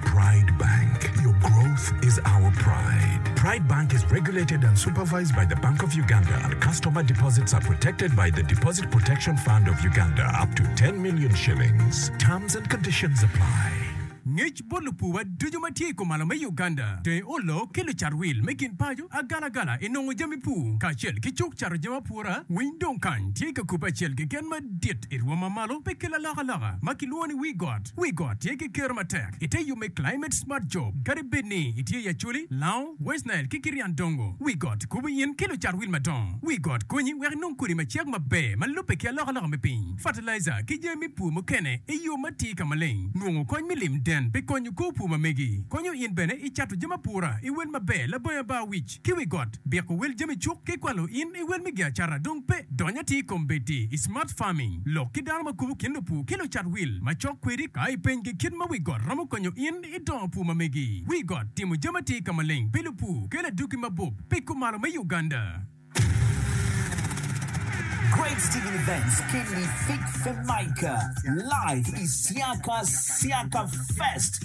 Pride Bank, your growth is our pride. Pride Bank is regulated and supervised by the Bank of Uganda. Customer deposits are protected by the Deposit Protection Fund of Uganda up to 10 million shillings. Terms and conditions apply. Ngec bot lupuwa ducu ma tye i kumalo me Uganda, tenge olo ki lucat wil me gin paco, agalagala i nongo jami pur, kacel ki cuk cato jami apura. Winy dong kany tye ka kubbe acel keken madit i rwom ma malo pe ki lalokaloka ma kilwongo ni wii got. Wi got tye ki ker matek i te yo me Climate Smart Job. Kadi bed ni itye i Acholi, Lao, West Nile, ki Kirian Dongo, wi got kubo in ki lucat wil madongo. Wi got konyi wek inong kodi ma cek maber ma lubbe ki alokaloka me piny, fatalaija, ki jami me pur mukene i yo ma atir ka maleng. Nongo kony me lim den pi konyo kor pur ma megi konyo in bene i cato jami apura i wel maber. Labongi Abar Wic. ki wi got, biko wel jami cuk ki kwalo in i wel me giacata dong pe. Dony atir i kom bedi i smart farming, lok ki dano ma kubo kin lupur ki lucat wil macok kwedi ka ipenygi kit ma wi got romo konyo in i dongo pur ma megi. Wi got timo jami atir ka maleng pi lupur kelo adwogi mabup pi kumalo me Uganda. Great Stephen Events Kenny Fik Femaika live Isiaka Siaka Fest.